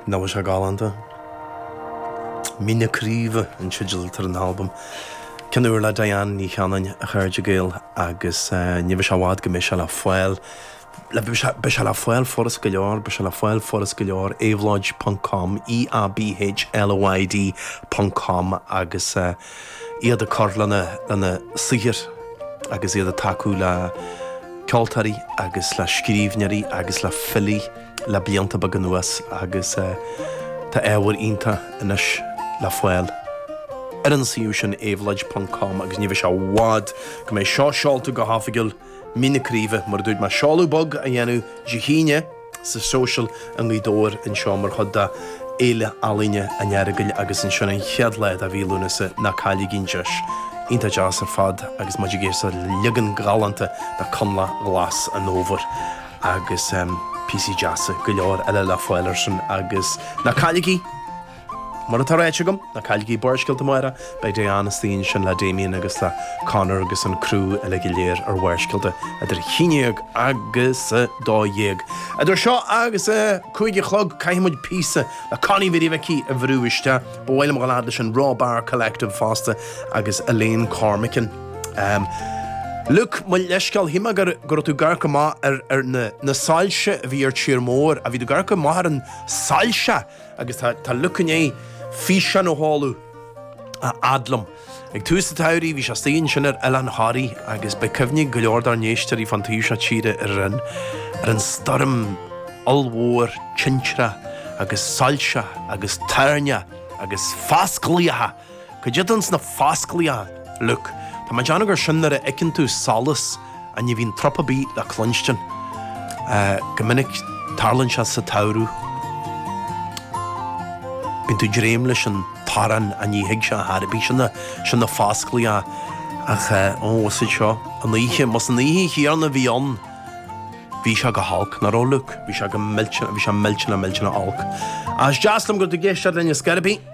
Nach bhfuil sé galánta. Mín na Craoibhe an teideal atá ar an albam. Ceann úr le Diane Ní Chanainn, a chairde Gael, agus ní bheidh sé i bhfad go mbeidh sé le fáil, le beidh sé, beidh sé le fáil furast go leor, beidh sé le fáil furast go leor, Éabhlóid ponc com, E-A-B-H-L-O-I-D ponc com, agus. iad ag cur lena saothar agus iad ag tacú le ceoltóirí agus le scríbhneoirí agus le filí le blianta beaga anuas agus tá ábhar iontach anois le fáil ar an suíomh sin, éabhlóid ponc com, agus ní bheidh sé i bhfad go mbeidh seo seolta go hoifigiúil! Mín na Craoibhe, mar a dúirt mé, seoladh bog á dhéanamh Dé hAoine sa Social i nGaoth Dobhair anseo mar chuid de Fhéile Ealaíne an Earagail agus ansin an chéad lá de mhí Lúnasa ná cailligí an deis iontach deas ar fad agus muid ag éisteacht le leagan galánta de Coinleach Glas an Fhómhair agus píosaí deasa go leor eile le fáil ar sin agus ná cailligí Mar atá ráite agam, ná cailligí Barrscéalta amárach, beidh Diane istigh ansin le Damien agus le Conor agus an criú uilig go léir ar Bharrscéalta idir 11 agus 12. Idir seo agus a cúig a chlog caithfidh muid píosa le Connie Mhary Mhicí a bhrú isteach. Ba mhaith liom a ghabháil fhad leis an Raw Bar Collective fosta agus Elaine Cormican. Luke, mo leithscéal, shíl mé go raibh tú gar go maith ar na soilse a bhí ar tír mór. Bhí tú gar go maith ar an soilse! Agus tá Luke i ndiaidh físeán a sheoladh a fhad liom. Ag tús an tsamhraidh, bhí sé astoigh ansin ar Oileán Thoraí, agus beidh cuimhne ag go leor dár n-éisteoirí fán taobh seo tíre ar an, ar an stoirm ollmhór tintreach agus soilse agus toirneach agus fasclaíocha! Cad é d'fhan sna fasclaíocha, Luke? Tá mé ag déanamh gur sin nuair a fheiceann tú solas ach ní bhíonn trup ar bith le cluinstin. Go minic tarlaíonn sé sa tsamhradh. Bíonn tú ag dréim leis an torann ach ní thig sé ar chor ar bith. Sin na, sin na fasclaíocha, ach ó, is iad seo an oíche, más an oíche chéanna a bhí ann, bhí sé go holc, nach raibh, Luke? Bhí sé go millte, bhí sé millteanach, millteanach olc. Ach is deas liom go raibh tú ag éisteacht linn a Scairpín!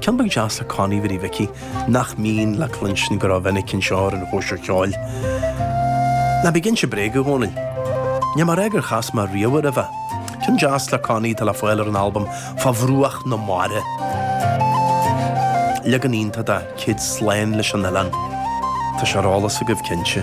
Ceann beag deas le Connie Mhary Mhicí, nach mbíonn le cluinstin go rómhinic anseo ar an chóisir cheoil, ná bí ag inse bréag, a Dhónaill. Níl mé ag rá gur chas mé riamh roimhe. Ceann deas le Connie atá le fáil ar an albam Fá Bhruach na Mara. Leagan iontach de Céad Slán leis an oileán. Tá sé ar eolas agaibh, cinnte.